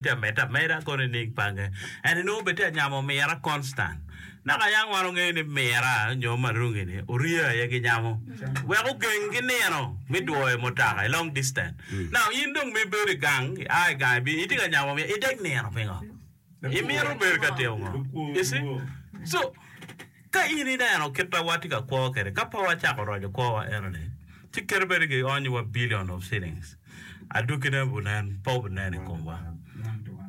Pi amedde ameda kono i niing pange, en onongo bene tye ka nyamo omira konstan. Naka aye an wano ngeyo ni mira nyo marungi-ni orye aye ki nyamo wek ogeng ki nino mi dwoyo mutaka i long distant. Now in dong ma ibedo i gang, i a i gang ibino, itye ka nyamo omira, ideg nino pingo? Imito bedo ka timo ngo? You see? So. Ka in ineno kit ma watye ka kwo kwede ka pe wacako roco kwowa enoni, ci kite bene gionyowa billion of shillings, adwogine wunen pe wunen i komwa.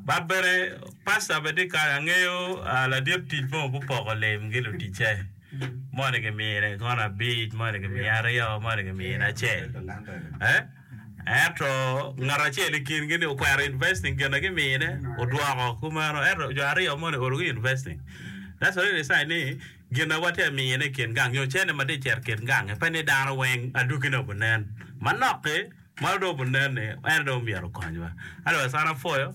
But bene Pastor bene tye kany, angeyo ladit tic mo gupoko lim gi luticce, moni gimine kono abic, moni gimiye aryo, moni gimine acel. Ento ngat acel i kingi ni okwero investing gin na gimine odwoko kumeno ento jo aryo moni orugi investing. That's already a sign ni gin na watye ka mine i kin gang nyo cene ma tye ka cito i kin gang-nge pe ni dano weng adwogine obinen manok-ki ma dong obinen-ni en aye dong myero okonywa. Otherwise an apwoyo.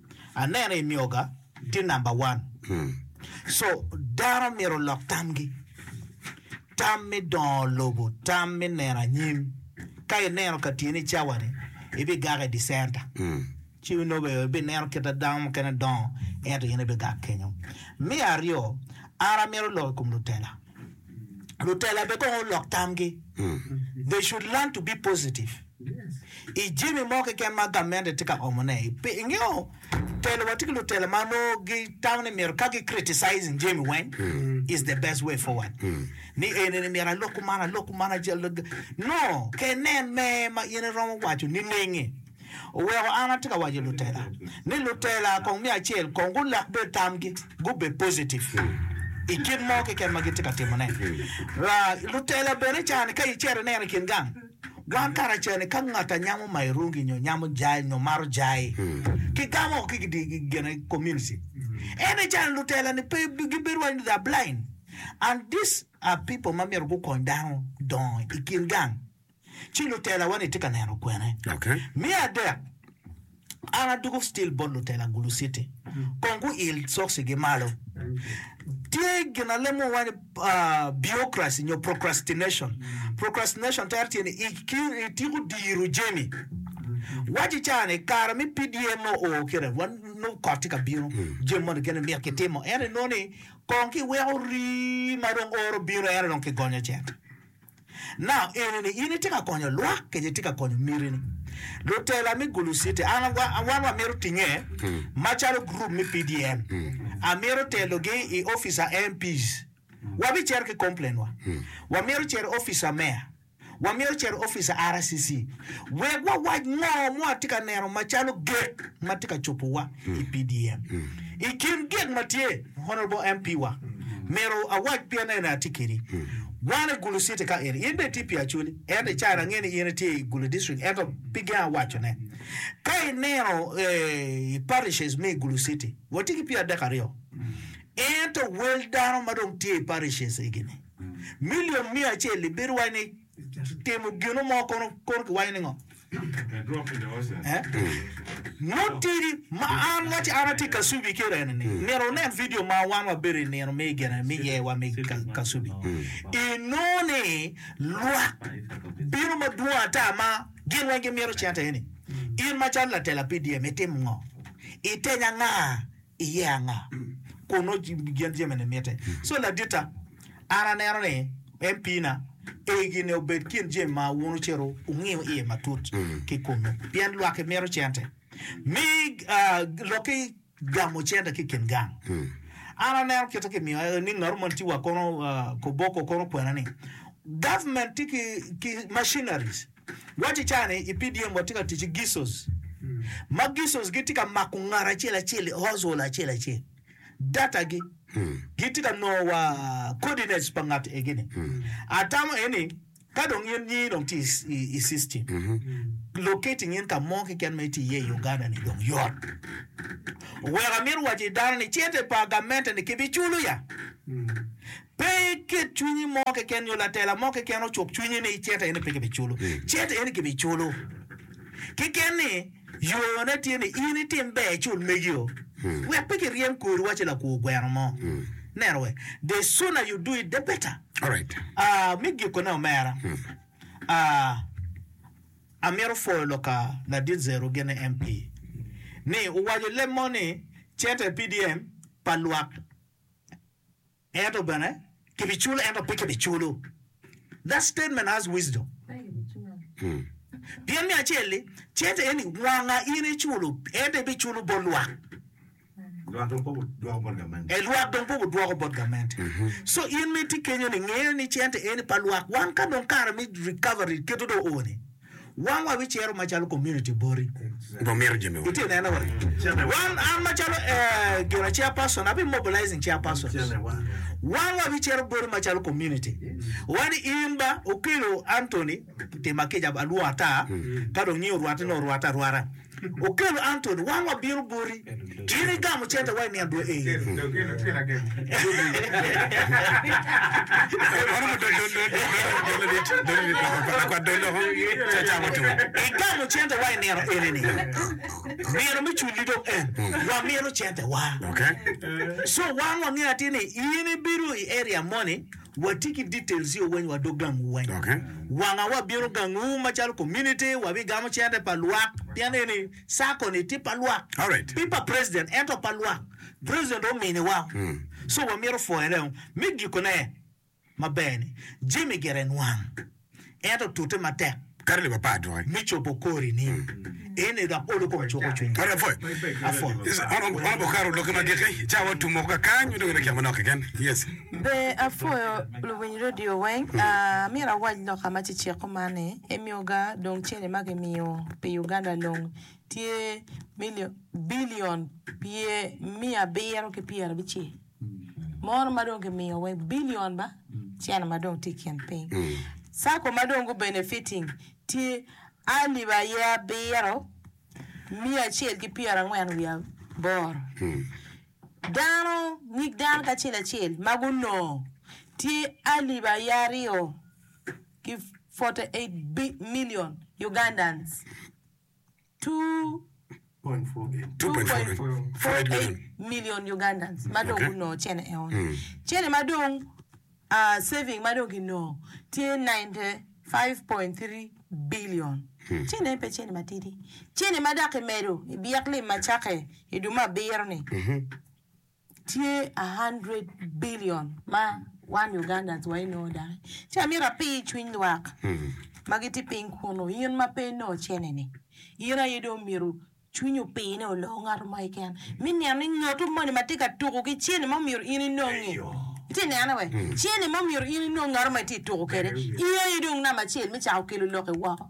Aneno i nyoga tye number one so dano myero olok tamgi tam me dongo lobo tam me neno anyim ka ineno ka tyeni cawani ibigak i dicenta ci inobe ibineno kit dano mukene dongo ento in ibigak kenyo me aryo an amito lok i kom lutela lutela bene kong olok tamgi. They should learn to be positive. I jami mo keken ma gamente tye ka omone, pi- ingeyo telo wa tye ki lutela ma nongo gitamo ni myero ka gi criticizing jami weng is the best way forward. Ni eni ni myero alok kuman, alok kuman, acal- no, kenen me ma in iromo waco niningi. oweko an atye ka waco lutela ni lutela kong me acel kong gulok bed tamgi gubed positive i kit mo keken ma gitye ka timone. Wa lutela bene cani ka icito ineno i kin gang, wan karacel-li ka ngat anyamo mayo rungi nyo nyamo jai nyo maro jai, kigamo woko ki gidi gine community. Ento i cani lutela-ni pe gibedo waco ni they are blind and these are people ma myero gukony dano dongo i kin gang. ci lutelawa-ni tye ka neno kwene. Me adek, an adwogo stil bot lutela Gulu City kong guil cokcigi malo. Tye gin ma lemo wa ni biokraci nyo procrastination. Procrastination tere tye ni ityeko diro jami. Waci ca ni kare me PDM nongo oo kire, wan nongo kot tye ka bino, jami moni kene myero kitimo, ento inongo ni kong kiweko rii ma dong oro bino ento dong kigonyo cente. Nam enini in itye ka konyo lwak kenyo itye ka konyo mitini. Lutela me Gulu City an wan wamito tinge macalo gurup me PDM amito telogi i office a MPs wabicito ki complain wa, wamito cito i office a Mayor, wamito cito i office a RCC wek wawac ngo mo atye ka neno macalo gek matye ka cobowa i PDM. I kin gek matye. Honourable MP wa myero awac pien en aye atye kedi wan i gulu city ka in in bene itye pi acholi ento icayo na angeyo ni in itye i gulu district ento pi gen awaco ne ka ineno i parishes me i gulu city watye ki pyer adek aryo ento wel dano ma dong tye i parishes egini million miya acel ibedo waci ni Timo gino mo kono kiwaco ni ngo? Mutidi ma an waci an atye Kasubi ki Rene ni myero wunen vidio ma wan wabedo i nino me gene me ye wa me Kasubi. Inongo ni lwak bino madwong ata ma gin weng gimito cente eni. In macalo latela PDM itimo ngo? Itenya nga iye anga kun nongo gin jami-ni mitte. So laditta, an aneno ni en piina egi ni obed kin jami ma wun ocito wungiyo iye matut ki kunnu, pien lwaki mito cente, mi loki gamo cente ki i kin gang. An aneno kite kimiyo ni ngat man tye wa kono koboko kono kwena ni government tye ki machineries Wacci cani i PDM watye ka tic ki Gisos, ma Gisos gitye ka mako ngat acel acel i household acel acel, data gi, gitye ka nongo wa coordinates pa ngat egi ni. Atamo aye ni ka dong in nyingi dong tye i i system, locating in ka mo keken ma itye iye i Uganda ni dong yot. Oweko amito waco i dano ni cente pa gamente ni kibiculo ya? Pe iket cwinyi mo keken nyo latela mo keken ocuk cwinyi ni cet eni pe kibiculo. Cet eni kibiculo. Keken ni yone tye ni in itim ber icul megi-o. Wek pe kiryem kori waci lakwo gweno mo. Neno we, The sooner you do it, the better. Aa, me gikone omera, aa, amito pwoyo lok ka Ladit Zero gene MP ni owaco leb mo ni, Cet e PDM pa lwak. Ento bene, kibiculo ento pe kibiculo. That statement has wisdom. Pien me acel-li, cente eni wanga in iculo, ento ibiculo bot lwak. Lwak dong pe gudwoko bot gamente. E, lwak dong pe gudwoko bot gamente. So, in ma itye kenyo-ni, nge ni cente eni pa lwak. Wan ka dong kare me recovery keto dong oo-ni, Wan wa wi ciro ma calo community boti dong mito jami weng. Iti neno wa. Wan an ma calo eh, gina chair person, abi mobilizing chair persons. Wan wa wi ciro boti ma calo community. Wan in ba okelo Anthony, tima kica alwor ata, ka dong nyi orwate no orwate arwata. Okelo Anthony, wan wabino boti. In igamo cente wa i nino dwe eni. Igamo cente wa i nino eni ni. Nino me cul-li dong en. Wamito cente wa. So wan wangeyo atir ni in ibido i area moni. Wati ki details yo weny wa dog gang wu weny. Wanga wa bino gang wu macalo community wa bi gamo cente pa lwak pien eni circle ni tye pa lwak pe pa president ento pa lwak president omini wa so wa mito pwoyone o. Me giko ne maber ni Jimmy gire nwang. en otute matek. Kato leb apar dwoke. Me cobo kori ni, en aye dok olo kom cuko cwiny. Kato apwoc. Apwoc. Yes. Ono, ono obwoko kato lokke magiki, cawa otum moko kakany, me dong en akyek manok keken. Yes. Be apwoyo luwiny radio weng. Amyero awac loka ma ceceko man ni, emyo ga dong cene ma gimiyo pi Uganda long tye million, billion pye miya abiro ki pyera abicel. mono ma dong kimiyo wai billion ma cen ma dong tye ikin piny. Sacco ma dong gu benefiting tye alip aye abiro, miya acel ki pyera angwen wiye aboro. Dano, nyig dano kacel acel ma gunongo tye alip aye aryo ki forty eight million Ugandans. 2.48 million Ugandans ma dong gunongo cene eo ni. Cene ma dong saving ma dong kinongo tye 95.3 billion. Cene eni pe cene matidi. Cene ma dok kimedo i byek lim ma cakke i dwe me abiro ni. Tye a hundred billion ma wan Ugandans wa inongo dai. Ci amito api i cwiny lwak ma gitye piny kunu, in ma pe inongo cene-ni, in aye dong myero cwinyi opi ni oloo ngat mo keken. Mi neno ni ngatu moni ma tye ka tuku ki cene ma myero in inongi, itye nene wee? Cene ma myero in inong ngatu ma itye tuku kede, in aye dong namba acel mi cako kelo loki woko.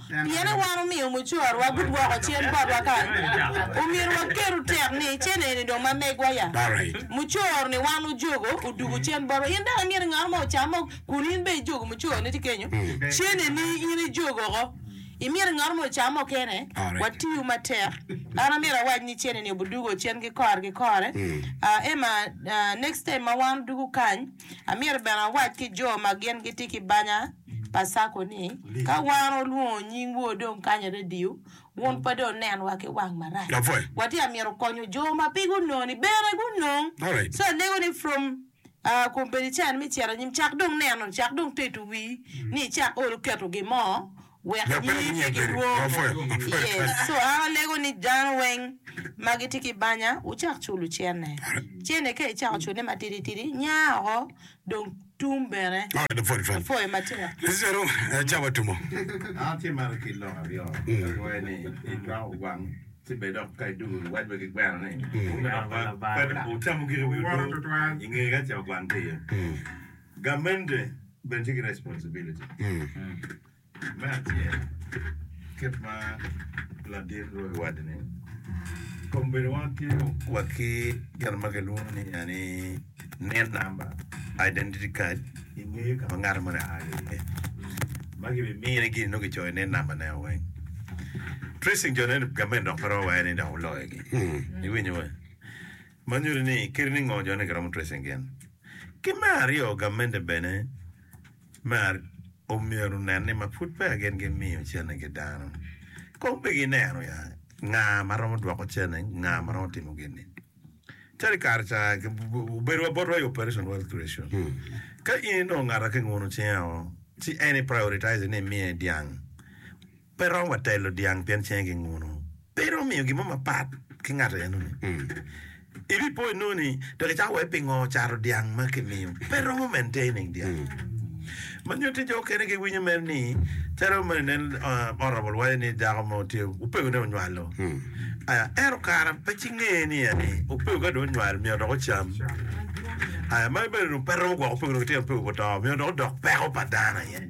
Pien i wan omiyo mucorwa gudwoko cen botwa kany, omyero waketu tek ni cen eni dong ma megwa ya. Mucor ni wan ojogo odugo cen botwa. In dong imyero ngat mo ocam o kun in bene ijogo mucor ni tye kenyo. Cen eni in ijogo oko. Imyero ngat mo ocam o kene. Watiyu matek. An amyero awac ni cen eni obudugo cen ki kore ki kore. Emma, next time ma wan odugo kany, Amyero bene awac ki jo ma gin gitye ki banya pa Sacco ni ka wan olwongo nying wor dong kany i radio, wun pe dong nenwa ki wang marac. Watye ka myero konyo jo ma pe gunongo ni bene gunong. So alego ni from uh, kombeddi cen me cito anyim, cak dong neno, cak dong tedo wii ni icak olo keto gin mo wek nyingi pe gidwong iye. So an alego ni dano weng ma gitye ki banya wucak culo cene. Cene ka icako culone matidi tidi nya woko dong tum bene pwoyo matek. Government bene tye ki responsibility me acel kit ma ladit loyo waco ni kong bedo wa ki wa ki gin ma kilwongo ni ya ni nin number, identity card i ngeye ka ma ngato moni a ki iye ma ki bi mine gini nongo ki coyo nin number ne o weng. Tracing jo ne government dok pe romo wacce ni dok oloyo gi iwinyo wa. Ma nyuto ni kadi ni ngo jone giromo tracing gin. Ki me aryo gamente bene mer omyero nen ni ma pud peya gin gi miyo cene gi dano kong pe gi neno ya nga ma romo dwoko cene nga ma romo timo gin ni. Calo i kare ca obedo wa botwa i operation wealth creation ka in inongo ngata ki nguno cinge o ci en i prioritize ni imiye dyang. Pe romo wa telo dyang pien cenge ginguno. Pe iromo miyo gin mo mapat ki ngat enoni. Ibipo inongo ni, Tek icako wai pingo cato dyang ma kimiyo. Pe romo maintaining dyang. Ma nyutte jo okene giwinyo mere ni, calo ma nen Honorable waco ni dako mo tye opego ne onywalo. Aya, ento kara pe ci nge ni ya ni opego ka dong onywal myero dok ocam. Aya, magi bene dong pe romo gwoko opego dong tyen opego pe oto. Myero dong odok peko pa dano aye.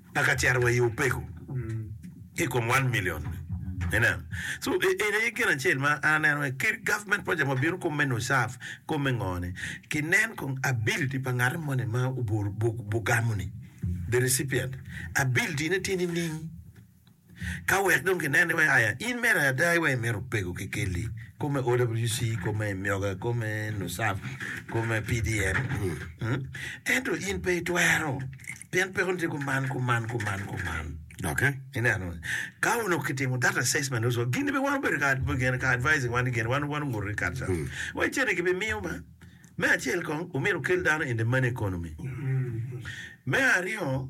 pa ka cero wa i opeko ki i kom one million ni inen so eni aye gin acel ma an aneno ni ki government project ma bino kom me NUSAF kom me ngo ni ki nen kong ability pa ngati mo ni ma obu bu bu gamo ni the recipient ability ne tye nining Ka wek dong kinen ni wek aya in mere ada iwek imito pego kekeli, kome OWC, kome Myoga, kome Nusaf, kome PDM, ento in pe itwero pien peko ni tye kuman, kuman, kuman, kuman. Doki. Ineno, ka onongo kitimo that assessment also, gin be wan obedo ka ad- gin- ka advising wan gin wan wan onguto ni kare ca. Wek cene gibimiyo ma. Me acel kong omyero okel dano in the money economy. Me aryo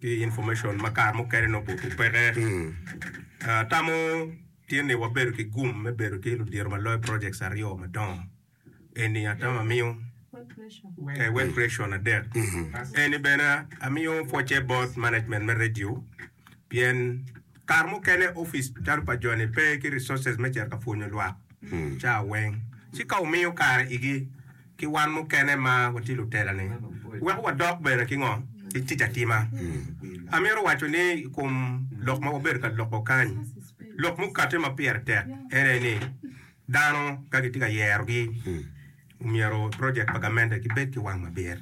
ki information ma kare mukene nongo obuto peke. Atamo tye ni wabedo ki gum me bedo ki ludito ma loyo projects aryo madongo eni, atamo amiyo eh, web creation adek eni bene amiyo pwocce bot management me radio pien kare mukene office calo pa joni pe ki resources me cito ka pwonyo lwak ca weng ci ka wumiyo kare igi ki wan mukene ma watye Lutelani, weko wadok bene ki ngo? Ki tic atima. Amito waco ni i kom lok ma wabedo ka loko kany, lok mukate ma pire tek en aye ni, dano ka gitye ka yerogi, omyero project pa gamente gibed ki wang mabit.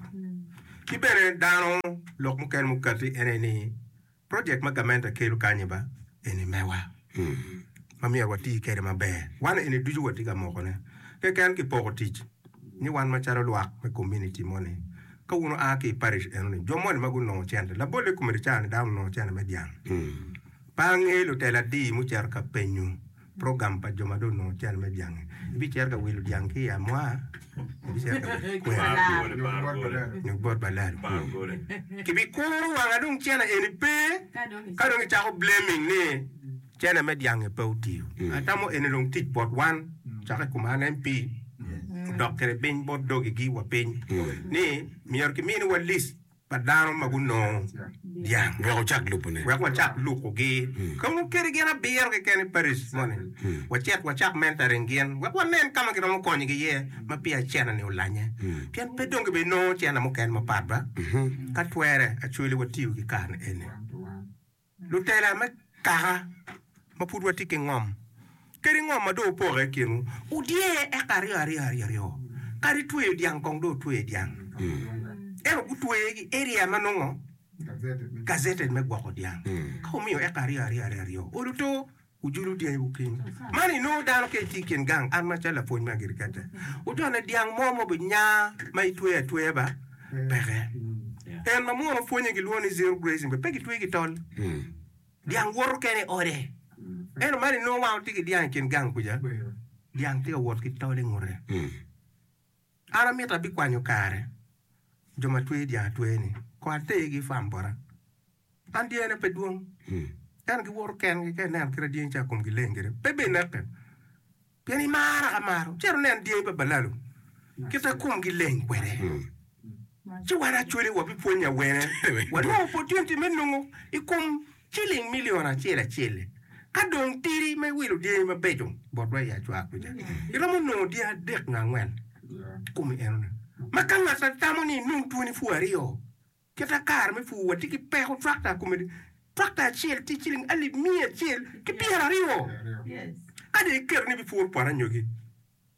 Ki bene dano lok mukene mukate en aye ni, Project ma gamente kelo kany ba eni mewa ma myero wati kwede maber. Wan eni ducu watye ka mokone keken ki poko tic ni wan macalo lwak me kominiti moni. Ka wun oa ki i parish enoni, jo moni ma gunongo cente, labolle komiti ca ni dano onongo cente me dyang, pe angeyo lutela adi mucito ka penyo. program pa jo ma dong onongo cen me dyangi. Ibicito ka wilo dyang ki i amwa, ibicito ka wilo kwena nyo bot balal kulu. Kibikuro wanga dong cene eni pe, ka dong kicako blaming ni cene me dyangi pe otiyo. Atamo eni dong tic bot wan caka i kom an MP odok kwede piny bot dogigi wa piny ni myero kiminiwa list. pa dano ma gunongo dyang wek wacak lukogi. Ka onongo keri gin abiro keken i parish moni, wacit wacak mentoring gin wek wanen ka ma giromo konyogi iye ma peya cene-ni olanye, pien pe dong gibedi nongo cene mukene mapat ba. Ka twere, acwele watiyo ki kare-ni eni. Lutela me kaka ma pud watye ki ngom kadi ngom ma dong opoke i kinwu, wudye eka aryo aryo aryaryo, kadi tweyo dyang kong dong wutweye dyang. Ento gutweye ki area ma nongo gazetted me gwoko dyang. Ka wumiyo eka aryo aryo aryaryo, olo to. Wujulu dyangiwu ki in. Man inongo dano ka itye i kin gang, an macalo lapwony me agiriketa, wujone dyang mo ma obinya ma itweyo atweya ba? Peke. En ma munu pwonye gilwongo ni zero grazing bene pe gitweye ki tol. Dyang woto kene i ode. Ento man inongo wan watye ki dyang i kin gang kuca, dyang tye ka wot ki tol i ngute. An amito abikwanyo kare jo ma twer dyang atwer ni kong atergi i farm bota. An dyena pe dwong, ento giwoto kengi ka ineno kit ma dyangi ca komgi leng kwede, pe bed ineke pien imara ka maro. Cito inen dyangi pa balalo kit ma komgi leng kwede. Ci wan actually wabipwonye awene, wanongo opportunity me nongo i kom ciling milion acel acel-li. Ka dong tiri ma iwilo dyangi mabeco botwa i acwar kuca, iromo nongo dyangi adek nyo angwen i kom enoni. Ma ka ngat atamo ni inong twoni pur aryo, kita kare me pur watye ki peko twakta komedi, twakta acel tye ciling alip miya acel ki pyeraryo. Ka dong iketo ni ibipuro poto anyogi,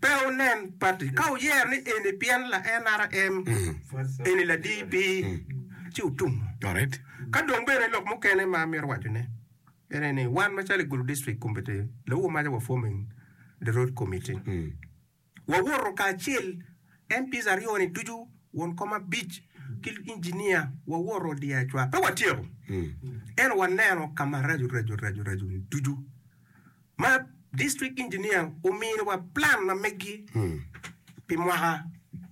Pe wunen pati ka wuyero ni eni pien la NRM, eni la DP, ci wutum. Ka dong bene lok mukene ma amito wacone en aye ni wan macalo i Gulu District Committee, Lawu Omaca wa forming the road committee. Wawoto kacel MPs aryo ni ducu, won kom abic ki engineer wawoto diya acwak. Pe watyeko, ento waneno ka ma raco raco raco raco ni ducu. Ma District Engineer omino wa plan ma meggi pi mwaka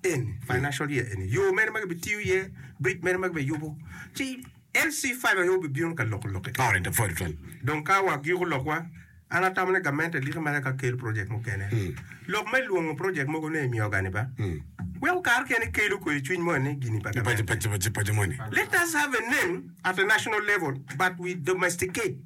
eni, financial year eni, yo mene ma gibitiyo iye, bridge mene ma gibiyubo, ci LC five aye obibino ka loko lokke. All right, the vote one. Dong ka wagyiko lokwa, an atamo ni gamente eliki mere ka kelo project mukene. Lok me lwongo project mogo ne imiyo gani ba? Weko kare okene ikelo kwede cwiny mo ni gini pa Paco, gamente. paco, paco, paco moni. Let us have a name at a national level but we domesticate.